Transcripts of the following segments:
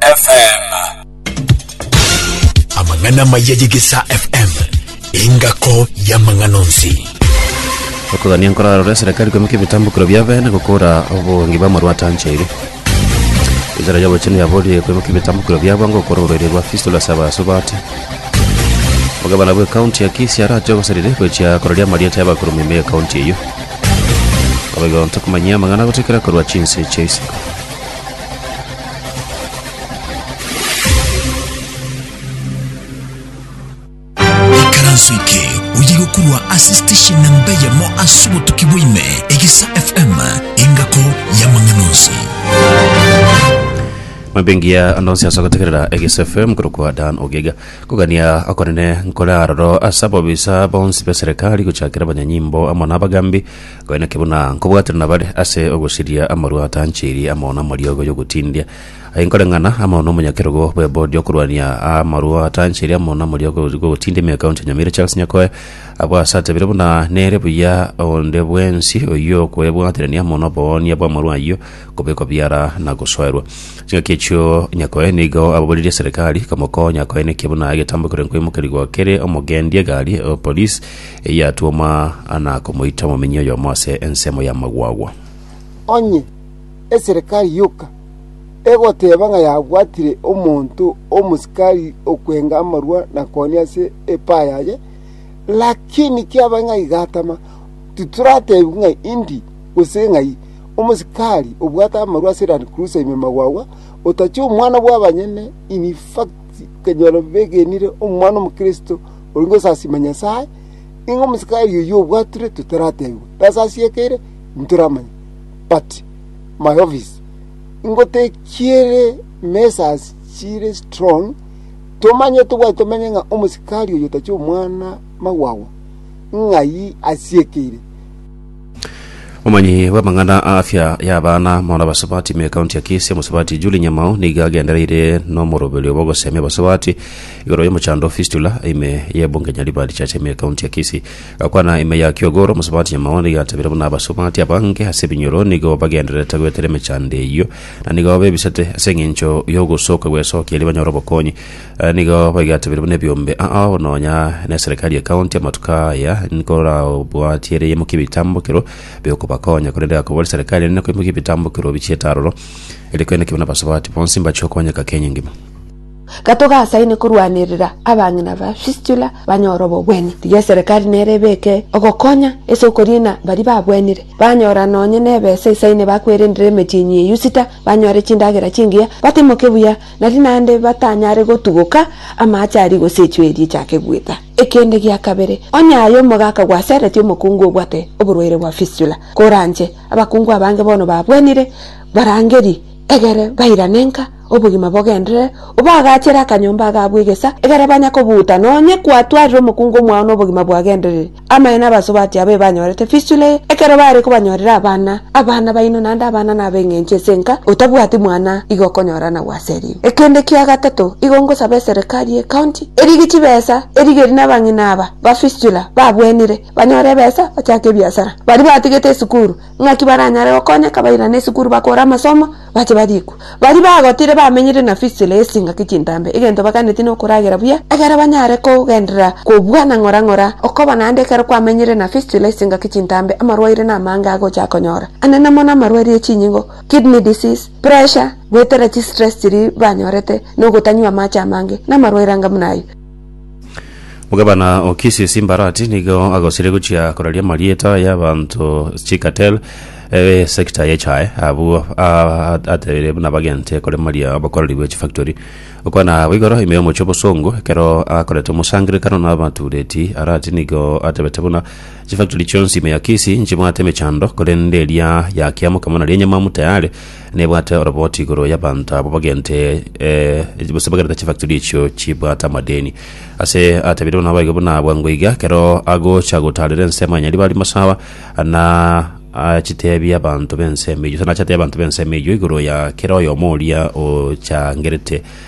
FM. Amang'ana maya y'Egesaa FM, engako y'amang'ana onsi. okogania nkorarore serikali kwemeka ebitambukiro biabe na gokora obonge bwa marwata nchaire wizara ya obochenu yaborie kwemeka ebitambukiro biabo nga gokora orwaire rwa fistula saba asubate omogabana bwe kaunti ya kisi arache obosarire gochia kororia amarieta y'abakuru meme ekaunti eyo abaigo ntokomanyia amang'ana gotekera korwa chinse chia isiko Ikaranso eke oye gokurwa ase station namba eyemo ase obotuki bwaime egisa fm engako y'amang'ana onsi mambingiya anonsi ase gotegerera egis fm korokwa dan ogega kogania akonene nkore aroro ase ababisa bonsi be serikali gochakera abanyanyimbo amo na abagambi Aye naki buna nkobwatire nabare ase ogosiria amarwa atanchirie amo namariogo y'ogotindia, aye nkoreng'ana amo nomonyakerogo bw'ebodi okorwania amarwa atanchirie amo namariogo y'ogotindia ime County ya Nyamira Charles Nyakoe abwo ase atebire buna nere buya onde bwensi oyio okoebwaterania amo noboonia bw'amarwa ayio kobekwa biara na gosoerwa ching'aki echio Nyakoe nigo ababoririe eserekari komokonya Nyakoe naki buna egetambo ekero nkoimokerigwa kere omogendia egari o police eyatwoma na komoita omominyi oyomo ase ensemo y'amagwagwa. Onye eserekari yoka egoteba ng'a yabwatire omonto omosikari okwenga amarua na koni ase epaa yaye, lakini kiabae ng'a igatama, titoratebi ng'a indi gose ng'ai. Omosikari obwate amarua ase Land Cruiser ime magwagwa, otachia omwana bw'abanyene in fact, okanyora begenire omwana omokristo. Ori gosasima Nyasae, ng'a omosikari oyio obwatire totaratebigwa, nase ase eke ere ntoramanye. But my office, ngotekiere measures chire strong, tomanye tobwati tomanye ng'a omosikari oyio tachi omwana magwagwa, ng'ai asiekeire. Omanyi bw'amang'ana a afya y'abana mona basubati me kaunti ya Kisii omusubati Julie Nyamao nigo agendereire n'omoroberio bw'ogosemia abasubati igoro y'omochando fistula ime y'ebunge Nyaribari Church ime kaunti ya Kisii gakwana ime ya Kiogoro omusubati Nyamao nigo atabire buna abasubati abange ase ebinyoro nigo bagendererete goetera emechando eyio na nigo bebisete ase eng'encho y'ogosoka gwesokia erio banyore obokonyi Nigo baigatebire buna ebiombe ao nonya neserekari ya county amatuko aya nkorabwatie ere yaimokia ebitambokero biokobakonya korende agakobora eserekari ere nekoimokia ebitambokero bichiete aroro ere kwene kebe nabasubati bonsi mbachie okonyeka kenya engima Gato gasaine korwanerera abang'ina ba Fistula banyore obobwenia. Tiga eserekari nere ebeke ogokonya ase okoriina baria babwenire. Banyora nonye nebesa esaine bakwerendere emetienyi ye Yusita, banyore chindagera chingiya, batimoke buya, Nari naende batanyare gotuguka amaache aria gose echwe eria echake gwita. Ekende gia kabere, onye aye omogaka gwaseretie omokungu obwate oborwaire bwa fistula, koranche abakungu abange bono babwenire, barangeri, egere bairane nka, obogima bogenderere, obaagachere akanyomba agabwo egesa, egere banya kobuuta, nonye kwatwarire omokungu omwao nobogima bwagendereri. Amaene abasubati aba ebanyorete fistula eye, ekero baare kobanyorera abana, abana baino naende abana nab'eng'encho ase enka, otabwati mwana igo okonyora na gwaseria. Ekende kia gatato, igo ngosaba eserekari y'ecounty erige chibesa erigerie nabang'ina aba ba fistula babwenire banyore ebesa bachake ebiasara, baria batigete esukuru, Naki baranyare gokonyeka bairane esukuru bakore amasomo, bache barikwe. Baria bagotire bamenyire na fisire y'esingaki chintambe, egento baganeti nokoragera buya, egere banyare kogenderera kobua na ng'ora ng'ora, okoba naende ekero kwamenyire na fisire y'esingaki chintambe amarwaire namange agocha akonyora, anene mono amarwaire ye chinyingo, kidney disease, pressure, goetera chistress chiria banyorete, nogotanywa amache amange, namarwaire anga buna ayio. Omogabana o Kisii Simbarati nigo agosiria gochia koraria amarieta y'abanto chikatel eh, sector ye chae abwo ah, atebire buna bagente koremaria abakoreri be chifactory okwana abo igoro ime y'omochie obosongo ekero akorete omosangerekano n'abatureti arati nigo atebete buna chifactory chionsi ime ya Kisii nchibwate emechando korende eria ya kiamokama nari enyamamu tayari Nebwate oroboti igoro y'abanto abwo bagente eh, gose bagerete chifactori echio chibwate amadeni. Ase atebireirwe naboigo buna abwangwe iga, ekero agocha gotaarera ensemo ya Nyaribari Masawa, na achiteebie abanto b'ensemo eyio, gose nache ateebie abanto b'ensemo eyio igoro ya kera oyomo oria ochangerete.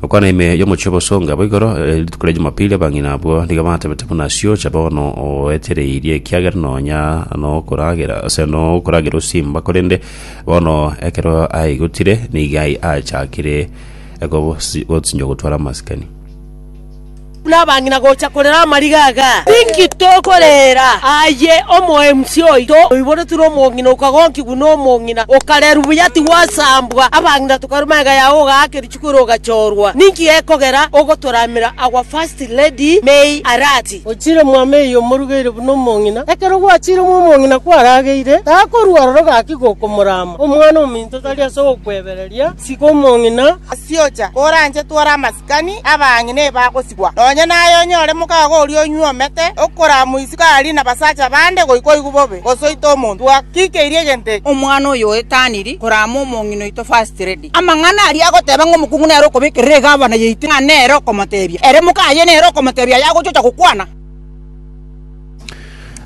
Gokwana ime y'omochie obosonga bo igoro, rituko ria Jumapili abang'ina abwo nigo batebete buna asio cha bono oetereirie ekiagera nonya nokoragera ase nokoragera osimba korende bono ekero aigotire nigo ai achakire gosinyo gotwara amasikani. buna abang'ina gocha korera amariga aya? Ninki tokorera aye omoemsi oito oiboretwe nomong'ina okagonkigwa nomong'ina, okarerwa buya tigwasambwa, abang'ina tokaruma ega yao ogaaka erichuko ere ogachorwa? Ninki gekogera ogotoramera our first lady May Arati? Ochiire mwamo eye omorugeire buna omong'ina. Ekero gwachiire mo omong'ina kwarageire, takorua aroro gaki gokomorama. Omwana ominto tari ase ogokwebereria. Siga omong'ina asiocha oranchetwe ore amasikani, abang'ina ebagosibwa. Nonya naye onyore mokago oria onyuomete okoraamwa isiko aarie nabasacha bande goika oigwe bobe, gose oite omonto. Twakikeirie egento eke. Omwana oyo oetaniri koraama omong'ina oito first lady. Amang'ana aria agoteba ng'a omokungu nere okobekerera egavana yaito ng'a nere okomotebia ere mokaye nere okomotebia aye agochiocha gokwana.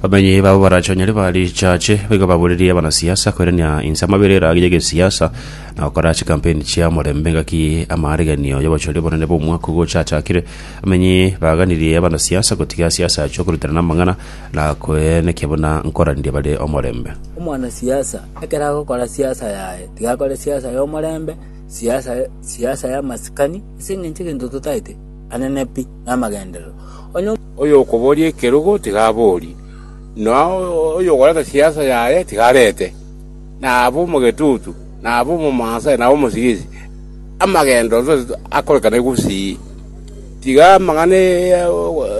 Abanywi babo barachonyire ba richache baigo baborerie abanasiasa koirania inse amabera eragi y'egesiasa na gokora chikampeni chia morembe ngaki amaarigenio y'obochori obonene bw'omwaka ogochachakire. Abanywi baganirie abanasiasa gotiga siasa achia korutana namang'ana na koenekia buna nkoraririe bare omorembe. Omwanasiasa ekero agokora siasa yaye, tiga akore siasa y'omorembe, siasa siasa y'amasikani, ase eng'encho egento totaete anene pi namagenderero. Onye Oyokoboria ekerogo tigaborie, na oyokoreta siasa yaye tigarete, nabe omogetutu, nabe omomansa, nabe omosigisi, amagendo onsi onsi akorekane gusii. Tiga amang'ana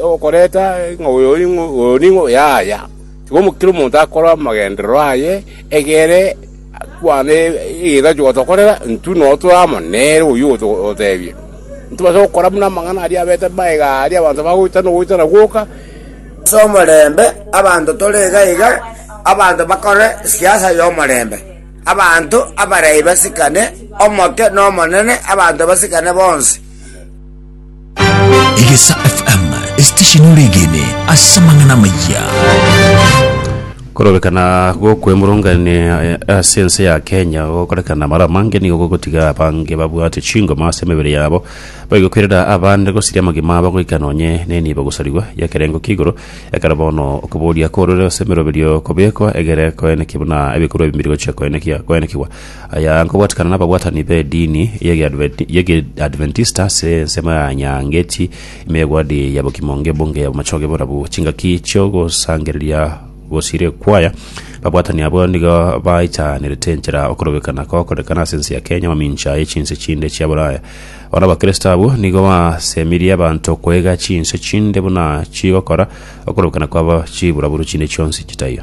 okoreta ng'a oyo ning'o, oyo ning'o, yaya. Tiga kera omonto akore amagenderero aye egere. Kwana egesacha ogotokorera, intwe noo tore amo nere oyio ogototeebia. Ntibasa gokora buna amang'ana aria abete magega aaria abanto bagoitana ogoitana gwoka. Ase omorembe abanto tore iga iga, abanto bakore siasa y'omorembe, abanto abarai basikane omoke n'omonene, abanto basikane bonsi. Egesa FM esitesheni oregene ase amang'ana amayia. korobekana gokwemurungania eh, ase ense ya kenya gokorekana mara amange nigo gogotiga abange babwate chingoma ase emebere yabo baigokwirera abande gosiria amagima abo goika nonye nenibo gosarigwa yakerengo kigoro ekero bono okoboria korure ase emeroberio kobekwa egere koenekia buna ebikorwa ebimiri gochia koenekia koenekigwa Aya nkobwatikana nababwatani b'edini y'Ekeadventista ase ensemo ya Nyangeti, ime y'egwadi ya Bokim'onge, Ebunge ya Bomachoge, Borabu, chingaki chi'ogosangereria gosire kwaya. Babwatani abwo nigo baitanerete enchera okorobekana kokorekana ase ense ya Kenya mamincha ye chinse chinde chia Bulaya. Bono Abakristo abwo nigo basemirie abanto koega chinse chinde buna chigokora okorobekana kwabo chiburaburu chinde chionsi chitaiyo.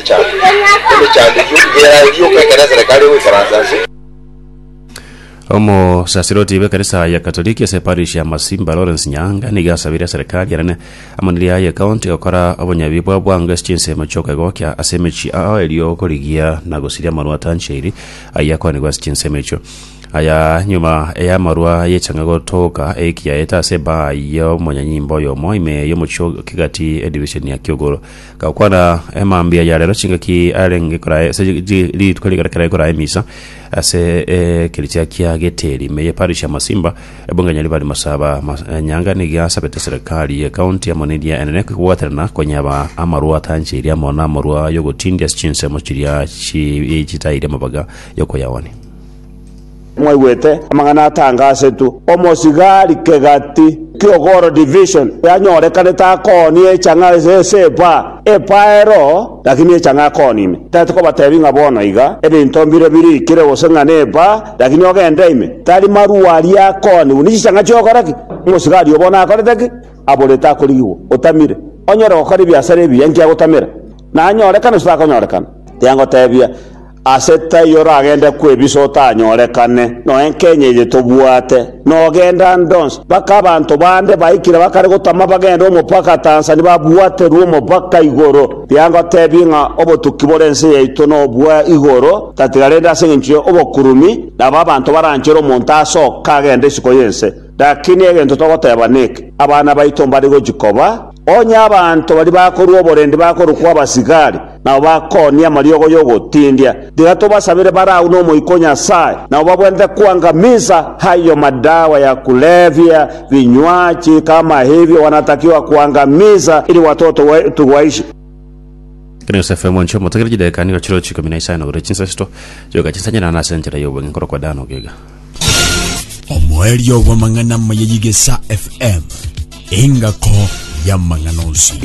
Omosaserdoti bw'ekanisa ya Katoliki ase parish ya Masimba Lawrence Nyaanga nigo asabire serikari enene amo neria ye county gokora obonyabi bwa bwango ase chinsemo chi'okoegokia ase emechie ao erio okorigia na gosiria amarwa atanchairi ayio akoanigwe ase chinsemo echio aya nyuma y'amarwa ayechanga gotoka ekiaete ase baa y'omonyanyimba oyomo ime y'omochie o Kigati edivision ya Kiugoro. Gakwana emambia ya rero chingaki arenge koraa ase ji- ji- rituko rigare kera ekoraa emisa ase ekeritia kia geteri meye parish ya masimba ebongenya ribari masaba mas- eh, nyanga niga asabete serikali ye county amo neria enene kobwaterana konyaba amarwa atancheiri amo namarwa yogotindia ase chinsemo chiria chi- chitairia amabaga yokoyawania Mwaigwete amang'ana atanga asetwe, Omosigari kegati ki'ogoro division yanyorekanete akooni echang'a ase epa, epa ero, lakini echang'a akooni ime. Tari kobatebi ng'a bono iga ebinto mbire birikire gose ng'a nepa, lakini ogende ime, tari marua aria akooni buna chichang'a chi'ogoro ki? Omosigari obo nakorete ki? Aborete akorigigwa. Otamire. Onyare gokora ebiasara ebiya inki agotamera? Nanyorekana gose takonyorekana? Tengotebia. Ase taiyo oragende kwebisa otanyorekane, noe nkenya eye tobwate, nogenda ndonsi. Baka abanto bande baikire bakare gotama bagende omopaka Tanzania babwaterwe omopaka igoro. Rigia ngotebie ng'a obotuki bore ense yaito nobwa igoro tatiga rende ase engencho ye obokurumi nabo abanto baranchere omonto asoka agende isiko y'ense. Rakini egento togoteba neke, abana baito mbare gochia koba. Onye abanto baria bakorua oborendi bakorokwa abasigari, nabo bakoonia amariogo y'ogotindia, tiga tobasabere bare agwo n'Omoika o Nyasae, nabo babwenerete kwanka misa, ayio madawa ya kulevya, binywachi, kamahibi, ogwanatakiwa kwanka misa, eri gwatotowe tugwaishi. Ekero Yosefu omonche omoto ageire chidakika nigo chire ochiko ime na isano, agure chinsa isito, chioka chinsa nyirana ase enchera y'obong'e nkorokwa Dan ogega. omoerio bw'amang'ana amaya y'Igesa FM, engako y'amang'ana onsi.